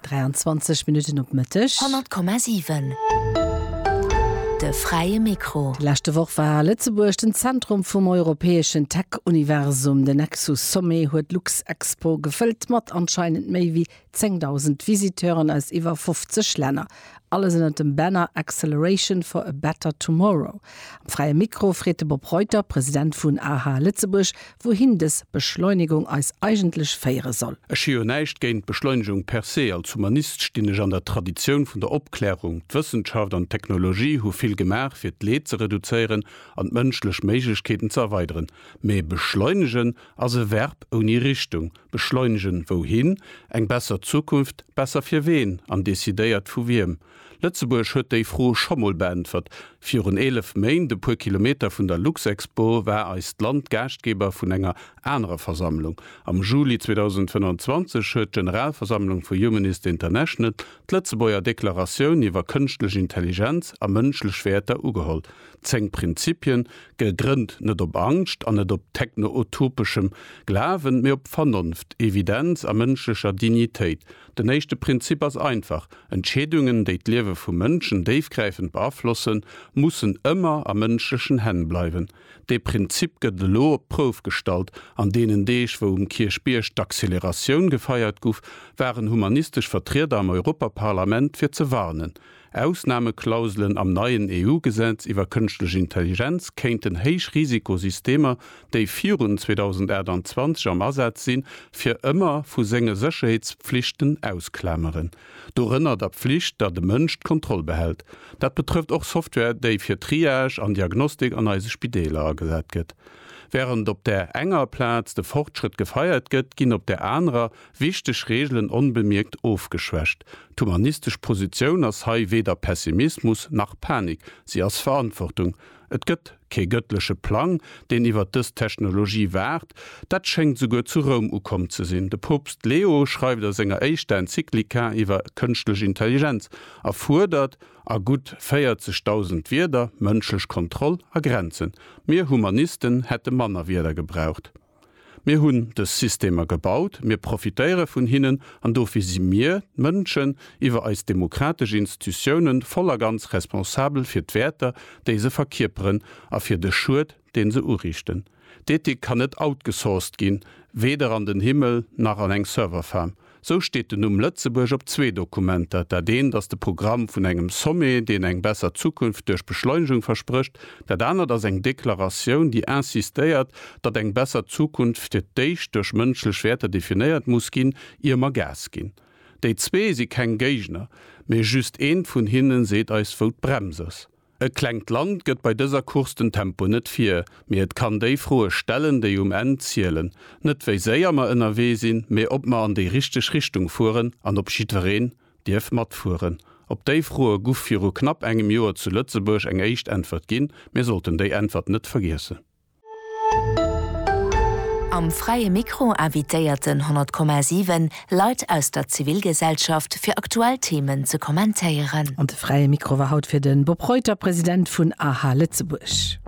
23 Minutten op Mëtteg. 100,7 De fräie Mikro. Déi leschte Woch war Lëtzebuerg den Zentrum vum europäeschen Tech-Universum. Den Nexus Sommet huet d'Luxexpo gefëllt mat anscheinend méi wéi 10.000 Visiteuren aus iwwer 50 Länner. Alles ënnert dem Banner Acceleration for a better tomorrow. Am Fräie Mikro freet de Bob Reuter, President vun aha Lëtzebuerg, wouhin dës Beschleunegung eis eigentlech féiere soll. Ech hu jo näischt géint d'Beschleunegung per se. Als Humanist stinn ech an der Traditioun vun der Opklärung. D'Wëssenschaft an d'Technologie hu vill gemaach, fir d'Leed ze reduzéieren an d'mënschlech Méiglechkeeten ze erweideren. Mee beschleunegen ass e Verb ouni Richtung. Beschleunegen wouhin? Eng besser Zukunft? Besser fir ween an decidéiert vu wiem? Lëtzebuerg huet déi Fro scho mol beäntwert. Virun 11 Méint, e puer Kilometer vun der Luxexpo, war eist Land Gaaschtgeber vun enger anerer Versammlung. Am Juli 2025 huet d'Generalversammlung vu Humanist International d'Lëtzebuerger Deklaratioun iwwer Kënschtlech Intelligenz a mënschlech Wäerter ugeholl. Zéng Prinzipien, gegrënnt net op Angscht an net op techno-utopeschem Glawen, mee op Vernonft, Evidenz a mënschlecher Dignitéit. Den éischte Prinzip ass einfach, Entscheedungen, déi d'Liewe vu Mënschen déifgräifend beaflossen, mussen ëmmer a mënschlechen Hänn bleiwen. Dee Prinzip gëtt elo op d'Prouf gestallt. An deenen Deeg, wou um Kierchbierg d'Acceleratioun gefeiert guff, waren humanistesch Vertrieder am Europaparlament fir ze warnen. Ausnameklauselen am neien EU-Gesetz iwwer kënschtlech Intelligenz kéinten héich Risikosystemer, déi virun 2028 am Asaz sinn, fir ëmmer vu senge Sécherheetspflichten ausklameren. Dorënner der Pflicht, datt e Mënsch d'Kontroll behält. Dat betrëfft och Software, déi fir Triage an Diagnostik an eise Spideeler agesat gëtt. Wärend op där enger Plaz de Fortschrëtt gefeiert gëtt, ginn op där anerer Wichteg Reegelen onbemierkt ofgeschwächt. D'humanistesch Positioun ass hei weder Pessimismus nach Panik, si ass Verantwortung. Et gëtt kee gëttleche Plang, deen iwwer dës Technologie waacht. Dat schéngt souguer zu Roum ukomm ze sinn. De Poopst Leo schreift a senger éischter Enzyklika iwwer kënschtlech Intelligenz a fuerdert a gutt 40.000 Wierder mënschlech Kontroll a Grenzen. Mir Humanisten hätte manner Wierder gebraucht. Mir hunn dës Systemer gebaut, mir profitéiere vun hinnen an dofir si mir, d'Mënschen, iwwer eis demokratesch Institutiounen voll a ganz responsabel fir d'Wäerter, déi se verkierperen a fir de Schued, dee se uriichten. D'Ethik kann net outgesourced ginn, weder an den Himmel nach an eng Serverfarm. Sou steet den Numm Lëtzebuerg op zwee Dokumenter, dat eent ass de Programm vun engem Sommet, deen eng besser Zukunft duerch Beschleunegung versprécht, dat anert ass eng Deklaratioun, déi insistéiert, datt eng besser Zukunft fir d'éischt duerch mënschlech Wäerter definéiert muss ginn, ier mer Gas ginn. Déi zwee si keng Géigner, mee just eent vun hinne seet eis, wou d'Brems ass. E klengt Land gëtt bei dëser Course den Tempo net vir, mee et kann déi Froe stellen, déi um Enn zielen. Net wéi séier mer ënnerwee sinn, mee ob mer an déi richteg Richtung fueren an ob jiddwereen dierf matfueren. Op déi Froe guff viru knapp engem Joer zu Lëtzebuerg eng éischt Äntwert ginn. Mir sollten déi Äntwert net vergiessen. Am Fräie Mikro invitéiert den 100,7 Leit aus der Zivilgesellschaft fir aktuell Themen ze kommentéieren. An de Fräie Mikro war haut fir de Bob Reuter, President vun aha Lëtzebuerg.